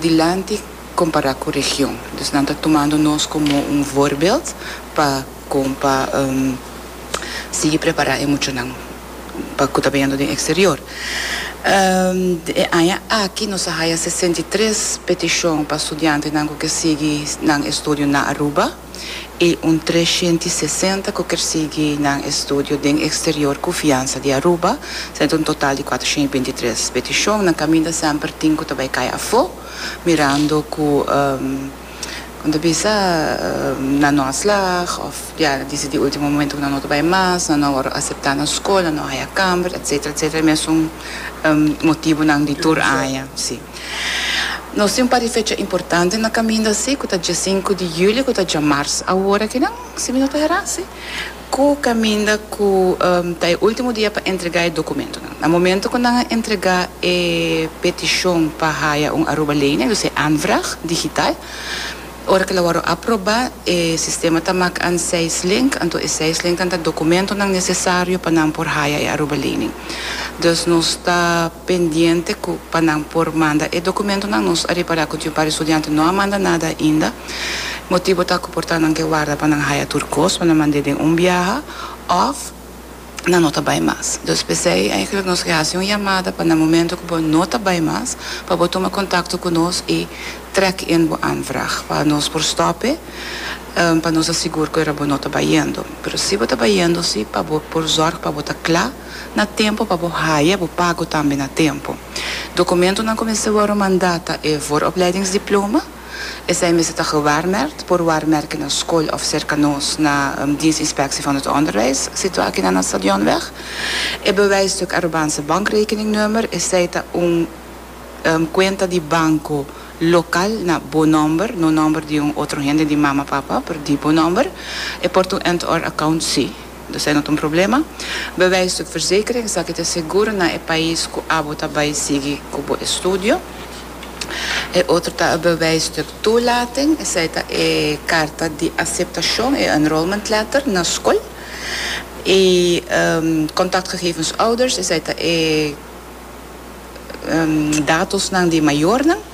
dilanti compará cu region. Dus nan ta tumando nos como un voorbeeld pa con pa sigui prepará e muchanan pa cu ta beyendo den exterior. E aña aki nos a haya sesenta i tres peticion pa studiantenan cu ke sigui nan estudio na Aruba. i un tres shenti sesenta ku kier sigui nan estudio den eksterior ku fiansa di Aruba, sa ta un total di kuater shenti binti tres petishon. Nan kaminda semper tin ku ta bai kai afó mirando ku kon ta bisa nan no a slag òf ya nan disi di último momento ku nan no ta bai mas, nan no a wòrdu aseptá na skol, nan no a haya kamber, etsetera, etsetera. Mesun motibunan di tur aña. Nos tin un par di fecha importante na kaminda si, ku ta dia sinku di julio ku ta dia mars. Awor aki nan, si mi no ta herá si, ku kaminda ku ta e último dia pa entregá e dokumentonan. Na momento ku nan a entregá e petishon pa haya un Aruba Lening, dus e aanvraag digital, Ora cu lo worde aproba, e sistema ta maak an seis link, anto e seis linknan ta documentonan necesario pa nan por haya e Aruba Lening. Dus nos ta pendiente cu pa nan por manda e documentonan. Nos a repara cu tin un par di studiante no a manda nada ainda. Motibo ta cu por ta nan ke warda pa nan haya tur cos pa nan mand'e den un biaha of. nan no ta bai mas. Dus p'esei eigenlijk nos ke hasi un yamada pa na momento ku bo no ta bai mas pa bo tuma kontakto ku nos i trek in bo aanvraag pa nos por stòp'e pa nos ta sigur ku era bo no ta bai yendo. Pero si bo ta bai yendo si pa bo por zòrg pa bo ta kla na tempu pa bo haya bo pago tambe na tempu. Dokumentunan ku mester wòru manda ta e vooropleidingsdiploma. Esei mester ta gewaarmerkt por waarmerken na skol of serka nos na Dienstinspectie van het Onderwijs, situá kinan na Stadionweg. E bewijsstuk aruban se bankrekeningnummer, esei ta un kuenta di banko lokal na bo nòmber, no nòmber di un otro hende, di mama, papa, pero di bo nòmber. E por ta un end-to-end account? Sí. Esaki no ta un problema. Bewijs di verzekering, esaki ta segur na e pais ku abo ta bai sigui ku bo estudio. E otro ta e bewijs di toelating, esei ta e karta di aseptashon, e enrollment letter, na skol. E kontaktgegevens ouders, esei ta e datos nan di mayornan.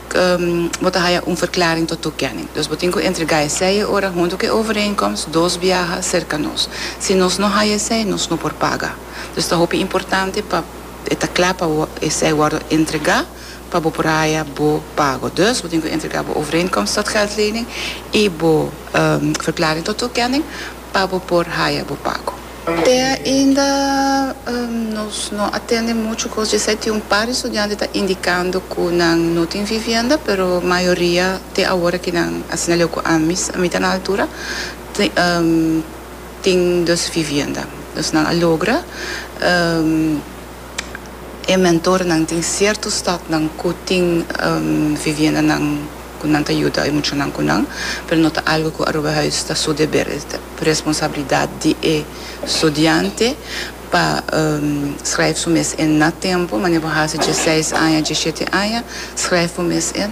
bo ta haya un verklaring to toekenning. Dus bo tin ku entregá esei ora huntu ku e overeenkomst dos biaha serka nos. Si nos no haya esei, nos no por paga. Dus ta hopi importante pa e ta kla pa esei wòrdu entregá pa bo por haya bo pago. Dus bo tin ku entregá bo overeenkomst tot geldlening i bo verklaring tot toekenning. pa bo por haya bo pago. Te ainda nos no a tende mucho cos djesei. Tin un par di studiante ta indicando cu nan no tin vivienda, pero mayoria te awor aki nan asina leu cu ami, ami ta na altura, tin dos vivienda. Nos nan a logra. e mentornan tin sierto stadnan ku tin viviendanan ku nan ta yuda e muchanan ku nan, pero no ta algu ku Aruba Huis ta su deber, es ta responsabilidat di e studiante pa skrèf su mes en na tempu, manera bo hasi dje seis aña, dje shete aña, skrèf bo mes en.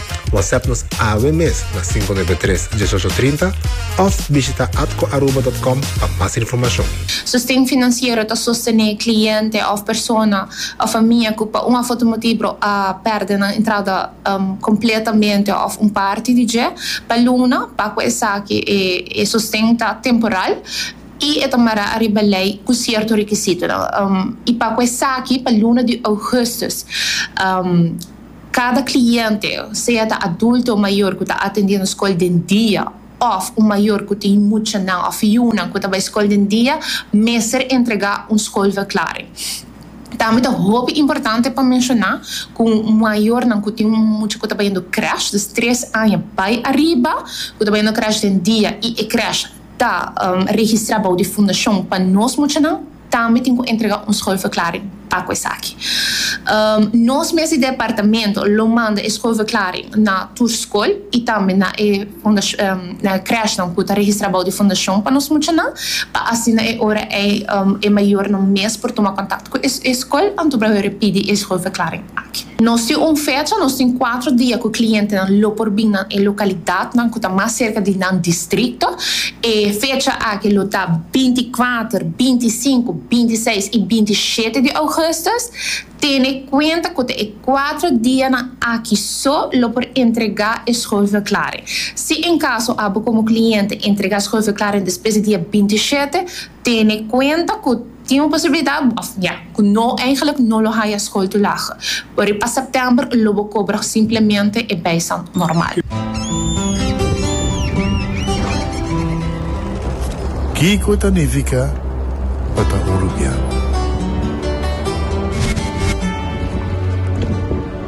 WhatsApp nos awe mes na 593 1830 of bishita atcoaruba.com pa mas informacion. Sosten finansiero ta sostené cliente of persona of famia cu pa un of otro motibro a perde nan entrada completamente of un parti di dje pa luna. Pa cu esaki e sosten ta temporal y e ta mará ariba ley cu cierto requisitonan y pa cu esaki pa luna di augustus. Kada kliente, sea ta adulto o mayor ku ta atendé nos skol den dia òf un mayor ku tin muchanan òf yunan ku ta bai skol den dia, mester entregá un skolverklaring. Tambe ta hopi importante pa menshoná ku mayornan ku tin un mucha ku ta bayendo krèsh, dus tres aña bai ariba, ku ta bayendo krèsh den dia i e krèsh ta registrá bou di fundashon pa nos muchanan, Tambe tin cu entrega un schoolverklaring pa cu esaki. Nos mes di departamento lo manda e schoolverklaring na tur school y tambe na e crèshnan cu ta registra bou di fundacion pa nos muchanan, pa asina e ora ey e mayornan mes por tuma contacto cu e school anto por a hore pidi e schoolverklaring. Nos tin un fecha, nos tin kuater dia ku klientenan lo por bin na e lokalidatnan ku ta mas serka di nan distrikto. E fecha aki lo ta binti kuater, binti sinku, binti seis i binti shete di ougùstus. Tene kuenta ku ta e kuater dianan aki so lo por entregá e schuldverklaring. Si en kaso a bo komo kliente entregá schuldverklaring despues di dia binti shete, tene kuenta ku. Tin un posibilidad of ña cu no eigenlijk no lo haya school to laag, pero pa september lo bo cobrag simplemente e bijstand normal. Kico ta nifica pa ta Uruguiano?